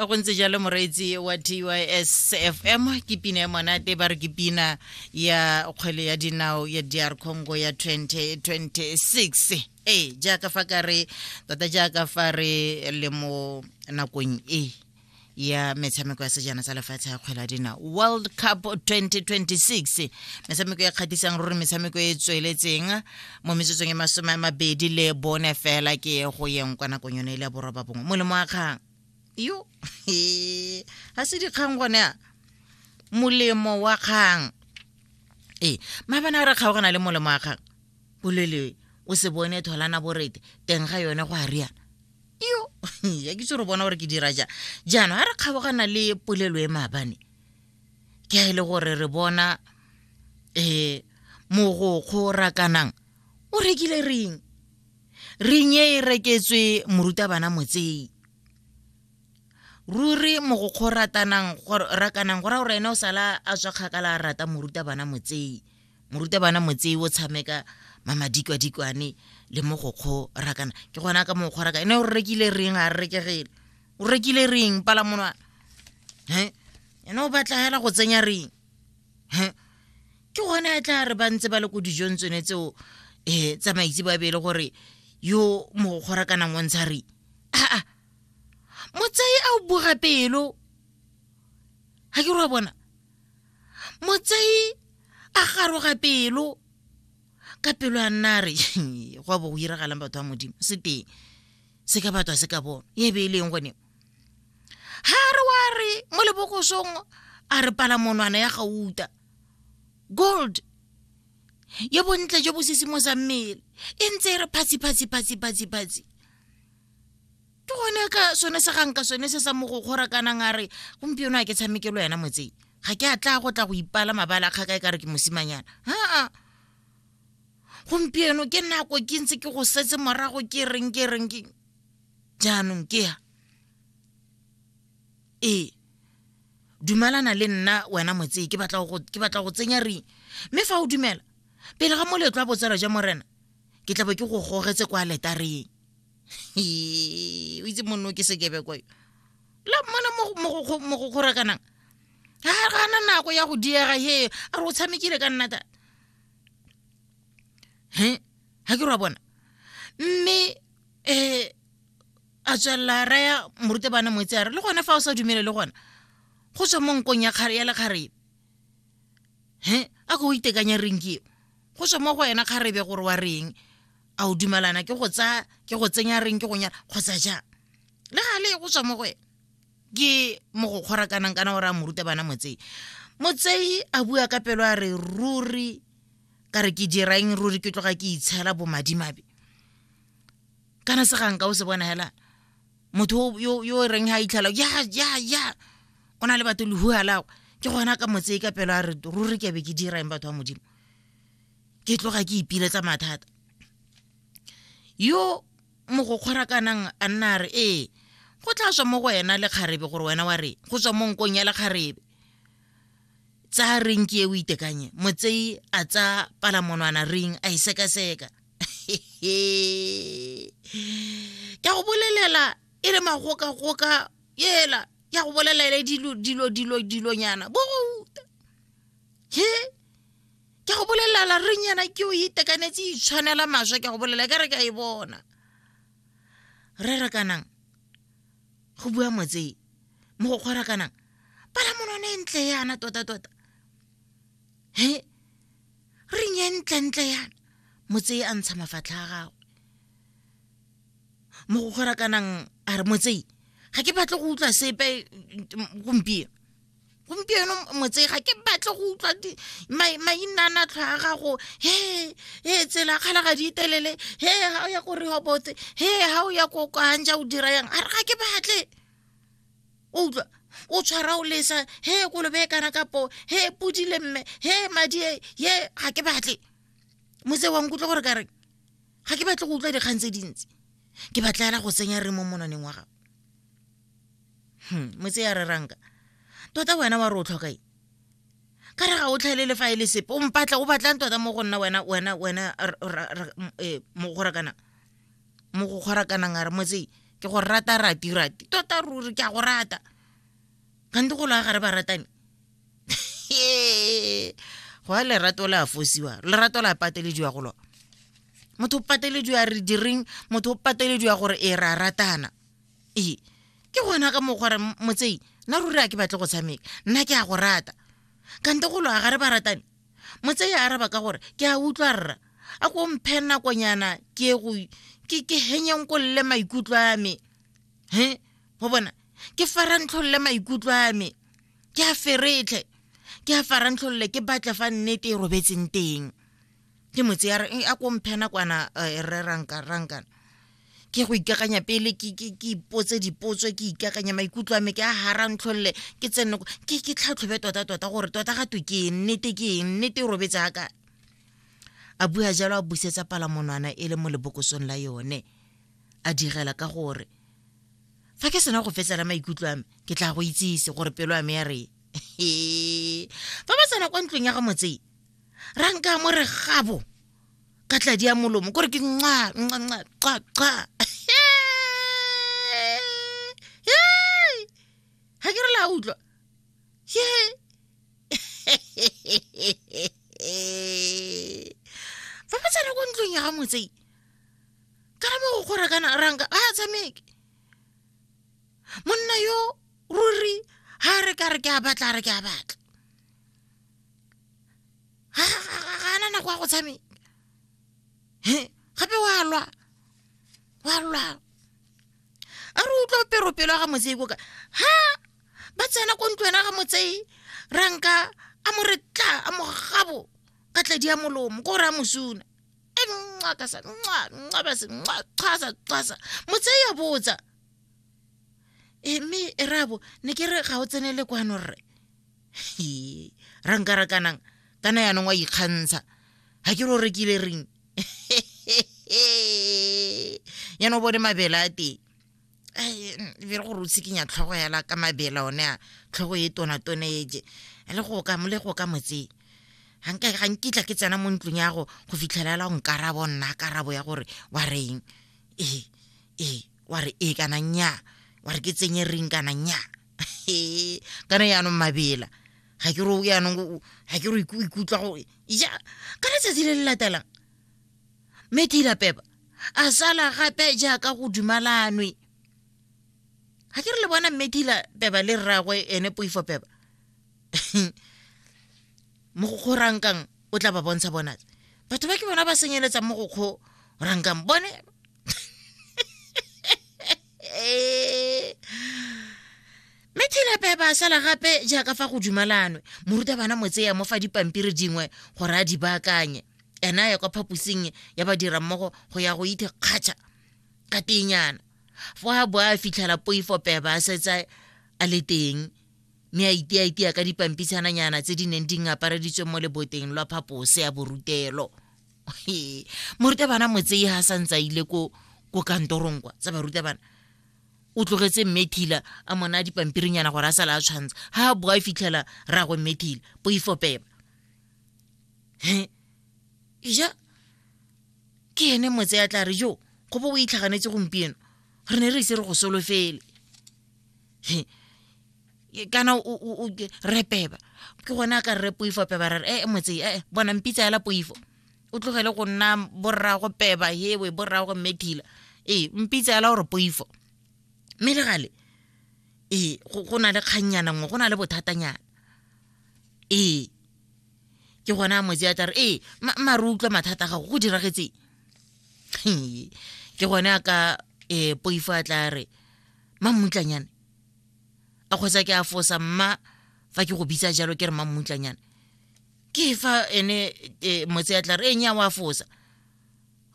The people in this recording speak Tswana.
go ntse jalo moreetsi wa tys fm ke pina ya monate ba re ke pina ya kgwele ya dinao ya dr congo ya 2026 ee jaaka fa ka re tota jaaka fa re le mo nakong e ya metshameko ya sejana sa lefatshe ya kgwela dina world cup 2026 metshameko e kgatisang ruri metshameko e tsweletseng mo metsotsong e masome a mabedi le bone fela ke e go yeng kwa nakong yone e le ya boroba bongwe molemo wa kgang yo ga se dikgang gone a molemo wa kgang ee mabana a re kgaogana le molemo wa kgang bolelewe o se bone tholana borete teng ga yone go a riana yo ya ke tse re bona gore ke dira ja jaanong ga re kgabogana le polelo e maabane ke a e le gore re bona um mogokgo rakanang o rekile reng reng e e reketswe morutabana motsei ruri mogokgo ratanang rakanang go ra gore ene o sala a tswa kgakala a rata morutabana motsei morutabana motsei o tshameka mamadikwadikwane le mo go kgorakana ke gona ka mo kgorakana ene o rekile reng a rekegele o rekile reng pala monwana he ene o batla hela go tsenya reng he ke gone a tla re ba ntse ba le ko dijong tsone tseo um eh, tsamaitse ba bele gore yo mo go kgorakanang o ntsha reng aa motsei a o boga pelo ga ke re wa bona motsei a garoga pelo ka pelo a nna re go bo go iragalang batho ba modimo se teng se ka batho a se ka bono e be e leng gone ga re wa re mo lebokosong a re pala monwana ya gauta gold yo bontle jo bo sesimo sa mmele e ntse e re phatsi phatsi phatsi phatsi phatsi ke gone ka sone se ganka sone se sa mo go kgora kanang a re gompieno a ke tshamekelo yena motseng ga ke a tla go tla go ipala mabala kgaka e ka re ke mosimanyana aa gompieno ke nako ke ntse ke go setse morago ke reng ke reng ke jaanong ke ya ee dumalana le nna wena motsee ke batla go tsenya ring mme fa o dumela pele ga moletlo wa botsala jwa morena ke tla bo ke go gogetse kwa letareng o itse monno ke sekebe kwa la mmona mo go kgorakanang ga gana nako ya go diega he a re o tshamekile ka nnata he ga ke ra bona mme um a tswelela raya morute bana moetse a re le gone fa o sa dumele le gona go tswa mo nkong ya kgare ya lekgarebe he a ko o itekanya renki go tswa mo go wena kgarebe gore wa reng a o dumalana ke go tsaya ke go tsenya reng ke go nyala kgotsa jang le ga le go tswa mo go ene ke mo go kgorakanang kana o re a moruta bana motsei motsei a bua ka pelo a re ruri ka re ke dirang ruri ke tloga ke itshela bomadimabe kana se ganka o se bona hela motho yo yo reng ha itlhala ya ya ya o na le batho lehua lago ke gona ka motse ka pelo a re ruri ke be ke dirang batho ba modimo ke tloga ke ipiletsa mathata yo mogokgorakanang a nna a re ee go tla tswa mo go wena le kgarebe gore wena wa re go tswa mo nkong ya le kgarebe tsa reng ke e o itekanye motsei a tsa palamonwana reng a e sekaseka ke go bolelela e le magokagoka ela ya go bolelela dilo dilo dilo dilonyana bouta he ke go bolelela reng yana ke o itekanetse itshwanela e maswe ke go bolela ka re ka e bona re rakanang go bua motsei mo go kgorakanang pala monone e ntle yana tota-tota he reng e ntle-ntle yana motsei a ntsha mafatlha a gagwe mo go kgorakanang a re motsei ga ke batle go utlwa sepe gompieno gompieno motsega ke batle go utlwa mainana tlhwa a gago he he tsela kgala ga di itelele he ga o ya ko rehobote he ga o ya ko kanja o dira yang a re ga ke batle o utlwa o tshwara o lesa he kolobe e kana kapo he pudile mme he madi e ye ga ke batle motse wa nkutlwa gore ka reng ga ke batle go utlwa dikgang tse dintsi ke batla fela go tsenya re mo monaneng wa gago Hmm, motse ya reranka tota wena wa re o tlhoka eng ka re ga o tlhaelele fa e le sepe o mpatla o batlang tota mo go nna wena wena wena eh, mo go rakana mo go kgorakanang a re motse ke go rata rati rati tota ruri ke a go rata kante go la gare ba ratane go a lerato la fosiwa lerato la patelediwa go lona motho o patelediwa re direng motho o patelediwa gore e ra ratana ee ke gona ka mokgwa re motsei nna ruri a ke batle go tshameka nna ke a go rata kante go loa ga re ba ratane motsei a araba ka gore ke a utlwa rra a ko mphe nakonyana ke go ke ke henyeng ko lle maikutlo a me he go bona ke farantlolle maikutlo a me ke a feretlhe ke a farantlolle ke batle fa nnete e robetseng teng ke mo tseya eh, a ko mphena kwana eh, rre ranka rankana ke go ikakanya pele ke ipotse dipotso ke ikakanya maikutlo a me ke a hara ntlholole ke tsene ke ke tlhatlhobe tota tota gore tota ga twe ke eng nnete ke eng nnete e robetse a kae a bua jalo a busetsa palamonwana e le mo lebokosong la yone a direla ka gore fa ke sena go fetsela maikutlo a me ke tla go itsise gore pelo ya me ya re fa ba tsena kwa ntlong ya ga motsee ra nka mo re gabo ka tladi ya molomo kore ke nqa nqa nqa qa qa ga ke re la utlwa ye ba ba tsena ko ntlong ya ga motsei ka re mo go kgora kana ranka a tshameke monna yo ruri ha re ka re ke a batla re ke a batla ga ana nako ya go tshameka gape wa lwa wa lwa a re utlwa pero pelo ga motsei koka ha ba tsena ko ntlo ena ga motsei ranka a mo re tla a mo gabo ka tladi ya molomo ko re a mosuna e nqa ka sa nqa nqa ba se nqa qasa qasa motsei ya botsa e mme e rabo ne ke re ga o tsenele kwano rre ra nka ra kanang kana yaanong wa ikgantsha ga ke re o rekile reng yana o bone mabele a teng be re gore o tshikinya tlhogo yala ka mabele one a tlhogo e tonatone eje le go ka mo le go ka motseng ga nkitla ke tsena mo ntlong ya go go fitlhelela go nkarabo nna karabo ya gore wa reng ee ee wa re ee kana nnyaa wa re ke tsenye reng kana nnyaa kana yaanong mabela ga ke ro yaanong ga ke ro ikutlwa gore ja ka letsatsi le le latelang mme tila pepa a sala gape jaaka go dumalanwe ga ke re le bona mme tila peba le rragwe ene poifo peba mo go kgo rankang o tla ba bontsha bona batho ba ke bona ba senyeletsang mo go kgo rankang bone eh, mme thilepe ba sala gape jaaka fa go dumalanwe morutabana motseya mo fa dipampiri dingwe gore a di baakanye ena ya kwa phaposing ya badirammogo go ya go ithe kgatšha ka tenyana fo a bo a fitlhela poifo peba a setsa a le teng mme a itiaitia ka dipampitshananyana tse di neng di ngapareditswe mo leboteng lwa phapose ya borutelo He, morutabana motsei ha sa ntse a ile ko ko kantorong kwa tsa barutabana o tlogetse mmethila a mona dipampirinyana gore a sala a tshwantsha ha a boa a fitlhela ragwe mmethila poifopeba he ja ke ene motse ya tla re jo go bo o itlhaganetse gompieno re ne re ise re go solofele kana re peba ke gone a ka rre poifo peba ra re ee motse ee bona mpitsa yala poifo o tlogele go nna borrago peba hewe borrago methila ee mpitsa yala gore poifo mme le gale ee go na le kgannyana nngwe go na le bothatanyana ee ke gone a motse a tla re ee mare utlwa mathata a gago go diragetseng ke gone a ka um poifo a tla re mammutlanyane a kgwetsa ke a fosa mma fa ke go bitsa jalo ke re mammutlanyane ke fa ene e, motse ya tla re enya wa fosa